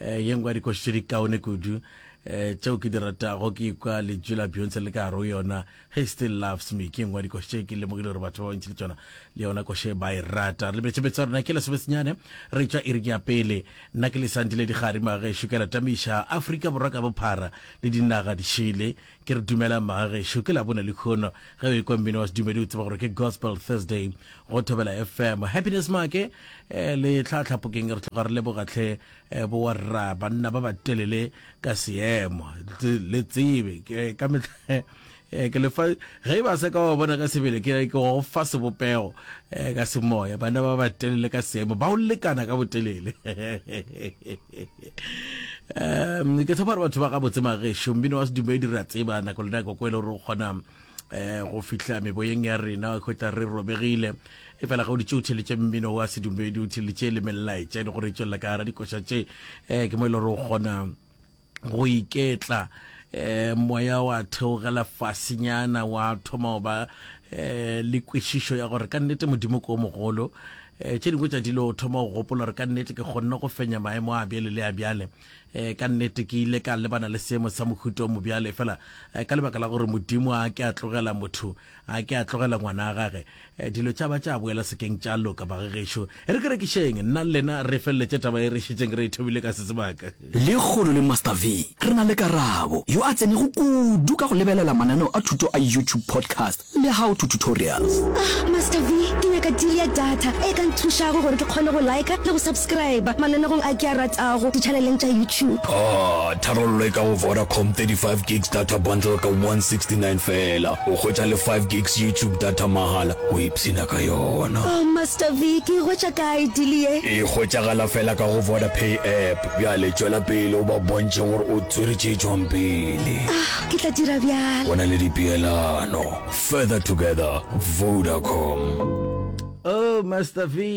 Eh, ye nngwe ya dikoši tše di kaone kudu eh, tšeo ke di ratago ke ikwa lentšu la beyonce le ka gare go yona he still loves me ke nngwe ya dikoši tše ke lemogile gore batho ba bantši le tsona le yona koše ba e rata re lebetšebetse ya rona ke lesobesenyane re tšwa iri ya pele nna ke lesantile digadi magešo ke la tamiša aforika borwa ka bophara le dinaga dišele Ke re dumelang bagagešo, ke labone lekhono ge o ekwa mmino wa sedumedi o tseba gore ke Gospel Thursday go Thobela FM. Happiness Maake eh, le tlhatlhapokeng re tloga re leboga tlhe eh, bo wa rra banna ba ba telele ka seemo Tse- le tsebe ke ka mehla eh, ke lefa ge e ba se ka wa bona ka sebele ke ke go fa sebopego eh, ka semoya banna ba ba telele ka seemo ba o lekana ka botelele um ke tshepa gore batho ba ga botse mageso mbino wa sedumedi re a tseba nako le nako ko e le gore o kgona um go fihla meboyeng ya rena kgotla re robegile e fela ga o ditse o theletše mmino wa sedumedi o theletše le melaetša e le gore e tswelela ka gara dikoša tše um ke mo e le gore o kgona go iketla um moya wa theogela fasinyana wa thoma go ba um le kwešišo ya gore ka nnete modimo ko mogolo Tše dingwe tša dilo o thoma go gopola gore, Ka nnete ke kgonne go fenya maemo a bjale le a bjale? Ka nnete ke ile ka lebana le seemo sa mohuta o mobjalo? Efela ka lebaka la gore Modimo a ke a tlogela motho, a ke a tlogela Ngwana wa Gage, dilo tša ba tša boela sekeng tša loka. Bagagešo, e re ke rekišeng nna le lena re feleletše taba ye re šetšeng re e thomile ka se sebaka. Lekgolo le Master V, re na le Karabo, yo a tsenego kudu ka go lebelela mananeo a thuto a YouTube podcast le How to Tutorials. Ah, Master V, ke nyaka deal ya data e ka nthušago gore ke kgone go liker le go subscriber mananegong a ke a ratago di-channeleng tša YouTube. Ah, tharollo e ka go Vodacom, 35 gigs data bundle ka 169 feela, o hwetša le 5 gigs YouTube data mahala. Sina ka yona. Oh Master Vic, e hwetša kae deal ye? E hwetšagala fela ka go Vodapay app. Bjale tšwela pele o ba bontšhe gore o tswere tše tšwang pele. Ah, ke tla dira bjalo. Go na le dipeelano. Further together, Vodacom. Oh Master Vic.